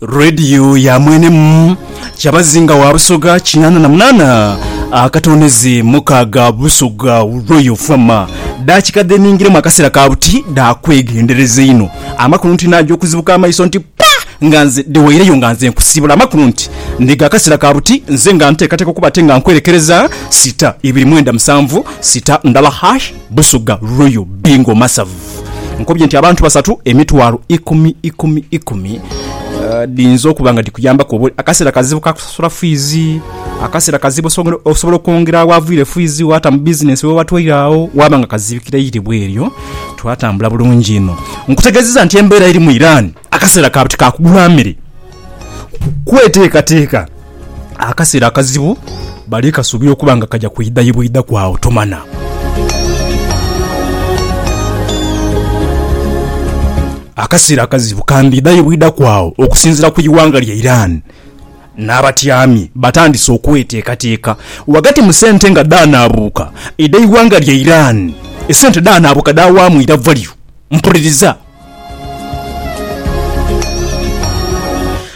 Radio ya mwene mu Kyabazinga wa Busoga kinana na munana akatonezi mukaga Busoga Royal Fama dakika dheningiremu akasera ka buti dakwegendereza inho amakulu nti naja okuzibuka amaiso nti pa nga nze dhewaireyo nga nze nkusibula amakulu nti ndi ga kasera ka buti nze nga ntekateka okuba ate nga nkwerekereza sita ibiri mwenda musanvu sita ndala hash Busuga Royal Bingo Masavu. Nkobye nti abantu basatu emitwalo ikumi ikumi ikumi dhiyinza okuba nga dhikuyambaku oba akaseera kazibu ka kusasula fiizi, akaseera kazibu osobola okwongera awaviire fiizi waata mu bizinensi we watwaire agho waaba nga kazibikira eire bweeryo twatambula bulungi inho. Nkutegeezezza nti embeera eri mu Iran akaseera kaabu tikaakugula mere kweteekateeka. akaseera akazibu bali kasuubira okuba nga kaja kwidha ye bwidha ku agho tomanha. Akaseera akazibu kandidha ye bwidha ku agho okusinziira ku ighanga lya Iran n'abatyami batandise okweteekateeka ghagati mu sente nga dhaanaabuuka edh'eighanga lya Iran. Esente dhaanaabuuka dhaawaamu iravwaliro. Mpuliriza.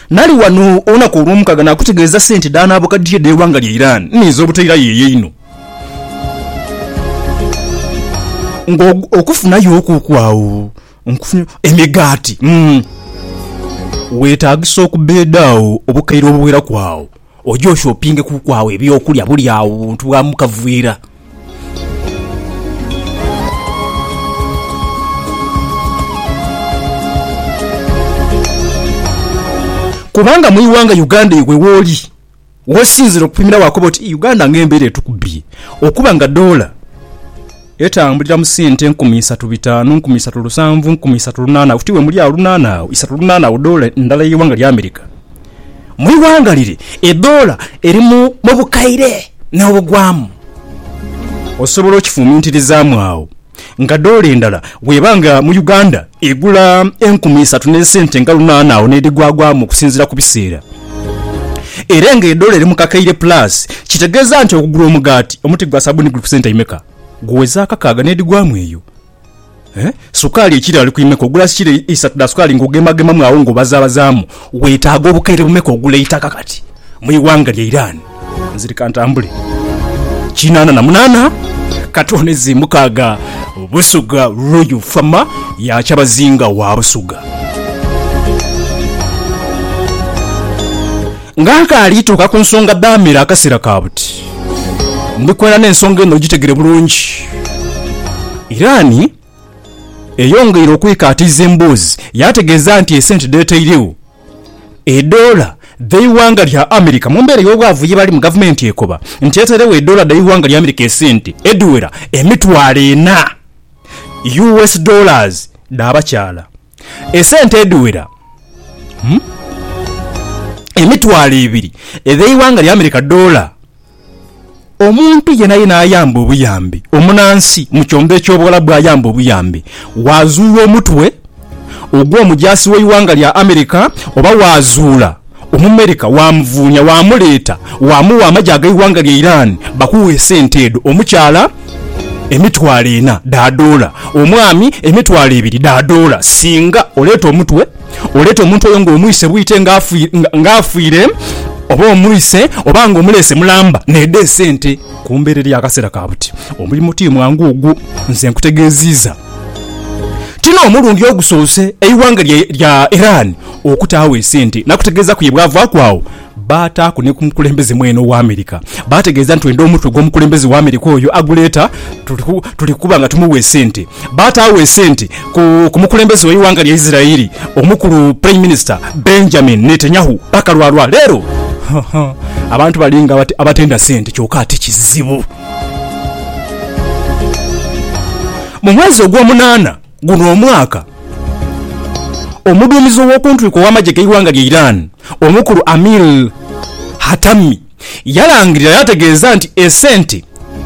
Nali ghano olunaku olwomukaaga naakutegeeza sente dhanaabukadhie dh'eighanga lya Iran ninze obutairayo eyo einho. Nga okufunayo okwo kwagho nkufunye emigaati, weetaagisa okubeeda agho obukaire obuweraku agho. Oje oshopinge kuku agho eby'okulya buli agho buntu bwa mu kavuira. Kubanga mu ighanga Uganda iwe wooli wosinzira okupimira waakoba oti Uganda ng'embeera etukubye okuba nga doola Etambulira mu sente nkumi isatu bitanu, nkumi isatu lusanvu, nkumi isatu lunana oti we muli agho lunana agho isatu lunana agho doola ndala eye ighanga lya America. Mu ighanga lire edoola eri mu bukaire no bugwamu. Osobola okifumintirizaamu agho nga doola endala bweba nga mu Uganda. Egula enkumi isatu n'esente nga lunaana agho n'edhigwagwamu okusinziira ku biseera. Era nga edola eri mu kakaire pulaasi, kitegeeza nti okugula omugaati, omuti gwa sabbuuni guli ku sente imeka? Guweza akakaaga n'edhigwamu eyo. Sukaali ekiro ali ku imeka? Ogula kilo isatu dha sukaali ng'ogeemagemamu agho ng'obazaabazaamu Weetaaga obukaire bumeka ogula eitaka kati mu ighanga lya Iran? Nziri ka ntambule. Kinaana na munaana ka twone zi mukaaga Busuga Royal Fama ya Kyabazinga wa Busuga. Nga nkaali tuuka ku nsonga dhaamera akaseera ka buti, ndi kwendha n'ensonga eno ogitegere bulungi. Iran eyongeire okwekaatiiza emboozi yaategeeza nti esente dheetairegho edoola dh'eighanga lya America mu mbeera ey'obwavu ye balimu, gavumenti ekoba nti etairegho edoola dh'eighanga lya America esente edhiwera emitwalo ena, US dollars, dha bakyala. Esente edhiwera emitwalo ebiri edh'eighanga lya America, doola, omuntu yenayena ayamba obuyambi, omunansi mu kyombo eky'Obuwalabu ayamba obuyambi, waazuula omutwe ogw'omujaasi w'eighanga lya America oba waazuula. Omumerika waamuvuunya, waamuleeta, waamugha amagye ag'eighanga lya Iran. Bakugha esente edho, omukyala emitwalo ena dha doola, omwami emitwalo ebiri dha doola, singa oleeta omutwe, oleeta omuntu oyo ng'omwise bwite ng'afiire, oba omwise oba ng'omuleese mulamba, n'edho esente. Kumbeerera y'akaseera ka buti. Omulimo ti mwangu ogwo, nze nkutegeeziiza. Ti n'omulundi ogusoose eighanga lya Iran Okutaagho esente nakutegeeza kuye bwavaaku agho baataaku ni ku mukulembeze mwene owa America baategeeza nti twenda omutwe gw'omukulembeze wa America oyo aguleeta tuli kuba nga tumuwa esente. Baataagho esente ku mukulembeze w'eighanga lya Israeli omukulu Prime Minister Benjamin Netanyahu bakalwa lwa leero. Abantu bali nga abatenda sente kyoka ate kizibu. Mu mwezi ogw'omunaana. Guno omwaka, omuduumizi ow'okuntwiko ow'amagye g'eighanga lya Iran, Omukulu Amir Hatami yalangirira yaategeeza nti esente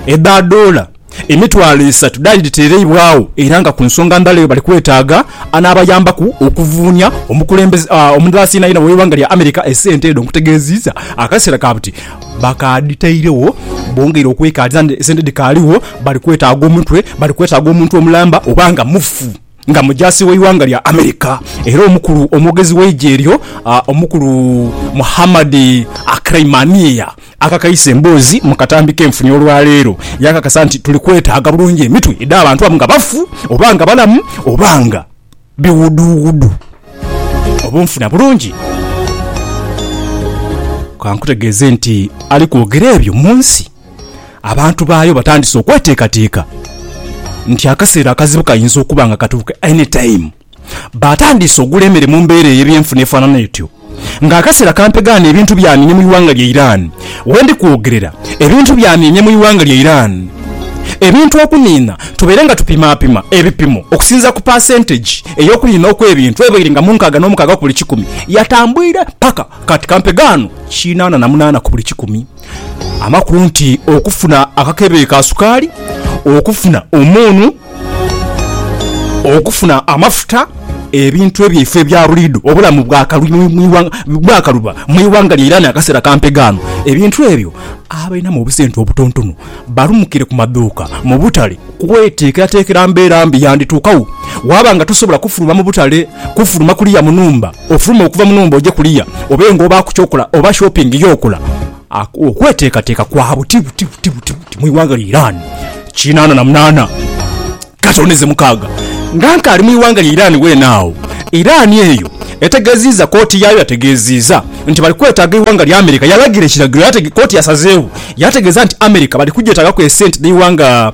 edha doola emitwalo esatu dhaali dhiteereibwagho era nga ku nsonga ndala eyo bali kwetaaga anaabayambaku okuvuunia. Omukulembeze omulala siyinayina ow'eighanga lya America esente edho nkutegeeziiza akaseera ka buti. Bakaadhitairegho, bongeire okwekaadhisa nti esente dhikaaligho. Bali kwetaaga omutwe, bali kwetaaga omuntu omulamba oba nga mufu nga mujaasi w'eighanga lya America era omukulu omwogezi w'eigye eryo, Omukulu Mohammad Akreimania akakaisa emboozi mu katambi k'enfuni olwaleero yaakakasa nti, Tuli kwetaaga bulungi emitwe edh'abantu abo nga bafu oba nga balamu oba nga. biwuduwudu obunfuna bulungi. Kankutegeeze nti ali kwogera ebyo mu nsi abantu baayo batandise okweteekateeka nti akaseera akazibu kayinza okuba nga katuuka anytime. Batandiise ogula emere mu mbeera ey'ebyenfuna efaanana etyo. Nga akaseera kampegaane ebintu byamyemye mu ighanga lya Iran. We ndi kwogerera, ebintu byamyemye mu ighanga lya Iran. Ebintu okuniina, tubaire nga tupimaapima ebipimo okusinziira ku paasentegi ey'okuniina okw'ebintu ebaire nga mu nkaaga n'omukaaga ku buli kikumi, yatambuire paka kati kampegaano kinaana na munaana ku buli kikumi. Amakulu nti okufuna akakebe ka sukaali, okufuna omuunu, Okufuna amafuta, ebintu ebyaife ebya buliidho, obulamu bwakaluba mu ighanga lya Iran akaseera ka mpegaano, ebintu ebyo abalinamu obusente obutontono balumukire ku madhuuka, mu butale kweteekerateekera mbeera mbi yandituukagho. Waaba nga tosobola kufuluma mu butale, kufuluma kuliya mu nhumba, ofulume okuva mu nhumba oje kuliya obe ng'obaaku ky'okola oba shopping y'okola. Okweteekateeka kwa buti buti buti buti buti mu ighanga lya Iran. Kinaana na munaana katoneze mukaaga nga nkaali mu ighanga lya Iran weene agho. Iran eyo etegeziiza kooti yaayo yategeziiza nti bali kwetaaga ighanga lya America yalagira ekiragiro kooti yasazeewo yategeeza nti America bali kugyetaagaku esente dh'eighanga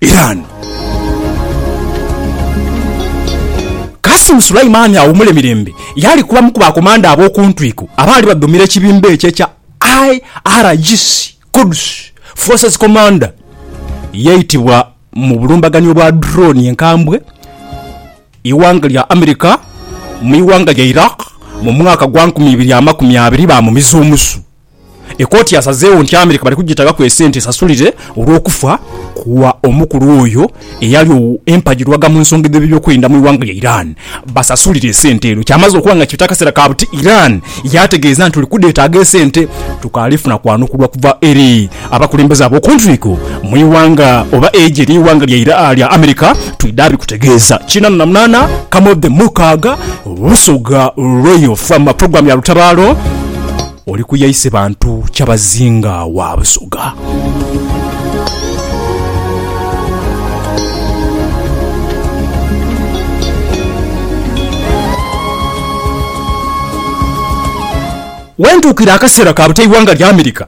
Iran. Qasim Suleimani awumule mirembe yaali ku bamu ku bakomanda ab'oku ntwiko abaali badhumira ekibinba ekyo ekya IRGC, Quds Forces Commander. Yaitibwa mu bulumbaganio obwa drone enkambwe ighanga lya America mu ighanga lya Iraq mu mwaka gwa nkumi ibiri amakumi abiri baamumiza omusu. Ekooti yasazeewo nti Amerika bali kugitagaku esente esasulire olw'okufa kwa omukulu oyo eyali empagirwaga mu nsonga edh'ebyokwerinda mu ighanga lya Iran. Basasulire esente edho. Kyamaze okuba nga kibita akaseera ka buti, Iran yaategeeza nti tuli kudheetaaga esente. Tukaali funa kwanukubwa kuva eri abakulembeze ab'oku ntwiko mu ighanga oba eigye ly'eighanga lya Amerika twidha bikutegeeza. Kiinano na munaana Kamodhemukaaga, Busoga Royal from Program ya Lutabaalo. Oli ku yaise bantu kyabazinga wa Busoga. Wentuukira akaseera ka buta eighanga lya America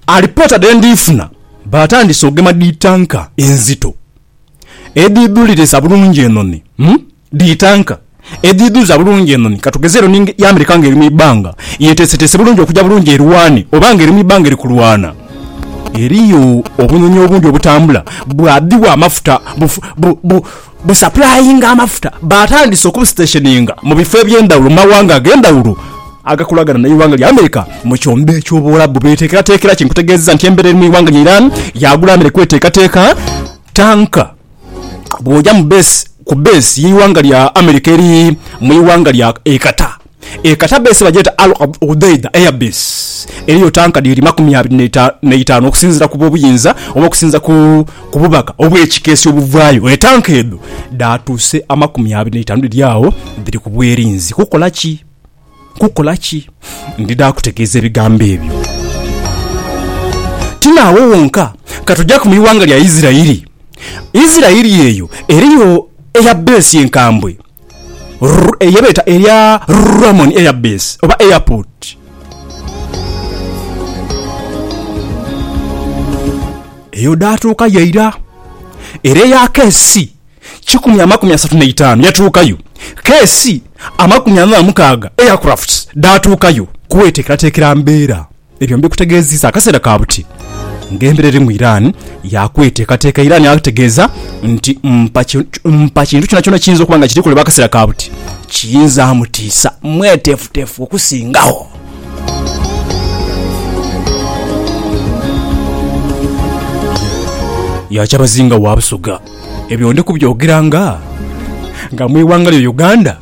alipoota dhe ndiifuna baatandise okugema dhi tanka enzito edhidhuliriza bulungi enoni. Dhi tanka edhidhuza bulungi enhonhi, katugeze enhonhi ya America nga eri mu ibbanga yeteeseteese bulungi okuja bulungi erwane oba nga eri mu ibbanga eri kulwana, eriyo obunhonhi obundhi obutambula bwadhibwa amafuta busapulayinga amafuta baatandise okubusitesheninga mu bifo eby'endhawulo mu mawanga ag'endhawulo agakolagana n'eighanga lya America mu kyombo eky'Obuwalabu beeteekerateekera ki? Nkutegeezezza nti embera eri mu ighanga lya Iran yaagula America eteekateeka tanka bwoja ku base yeighanga lya America eri mwighanga lya e Qatar. E Qatar base bagyeta Al Udeid air base eriyo tanka dhiri makumi abiri neitanu okusinzira ku bobuyinza oba okusinzira ku bubaka obwekikessi obuvayo. E tanka edho dhatuuse amakumi abiri neitanu dhiri agho dhiri ku bwerinzi kukola ki? Nkukola ki? Ndidha kutegeeza ebigambo ebyo. Ti naawo wonka, ka tujaku mu ighanga lya Isiraeli. Isiraeli eyo eriyo Eyabeesi enkambwe, ye beeta erya Ramoni Eyabeesi, oba Airport. Eyo dhaatuukayo eira, era eyaaka ensi. kikumi amakumi asatu n'eitaanu yatuukayo, keesi amakumi ana na mukaaga aircraft dhaatuukayo. Kweteekerateekera mbeera. Ebyo mbikutegeeziza akaseera ka buti ng'embeera eri mu Iran ya kweteekateeka. Iran yategeeza nti mpa mpa kintu kyonakyona ekiyinza okuba nga kiri kolebwa akaseera ka buti kiyinza mutiisa. Mweteefuteefu okusingagho. Yakyabazinga wa Busoga. Ebyo ndi kubyogeranga nga mu ighanga lyo Uganda,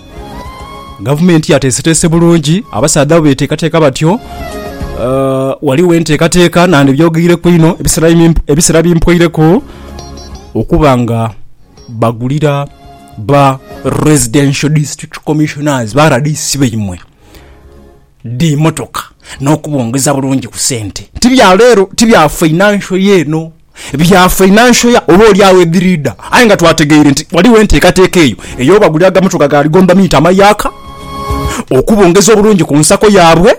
gavumenti yateeseteese bulungi, abasaadha bo beteekateeka batyo. Ghaligho enteekateeka nandhibyogeireku inho ebisera bi mpoireku okuba nga bagulira ba Residential District Commissioners, ba RDC, baimwe. dhi motoka n'okubongeza bulungi ku sente. Ti bya leero, ti bya fainansho ya eno, bya fainansho ya oba oli agho edhiriidha. Aye nga twategeire nti ghaligho enteekateeka eyo ey'obagulira agamotoka ga ligomba miita amayaaka okubongeza obulungi ku nsako yaabwe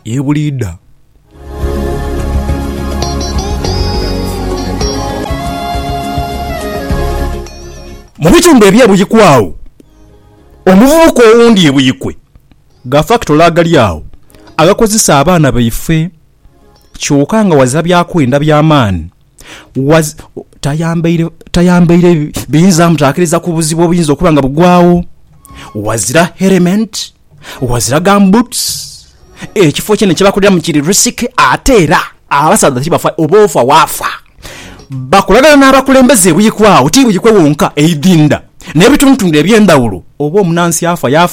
ye buliidha. Mu bitundu eby'e Buikwe agho, Omuvubuka owundi e Buikwe gha fakitole agali agho agakozesa abaana baife kyoka nga ghazira byakwenda bya maani ghazira tayambaire biyinza mutaakiriza ku buzibu obuyinza okuba nga bugwagho, ghazira herementi, ghazira gambutusi, ekifo kyene kye bakoleramu kiri risiki ate era abasaadha tibafa oba ofa waafa. Bakolagana n'abakulembeze buyikwa agho, ti buyikwe wonka, eidhindha n'ebitundhutundhu eby'endhawulo oba omunansi afa yaafa.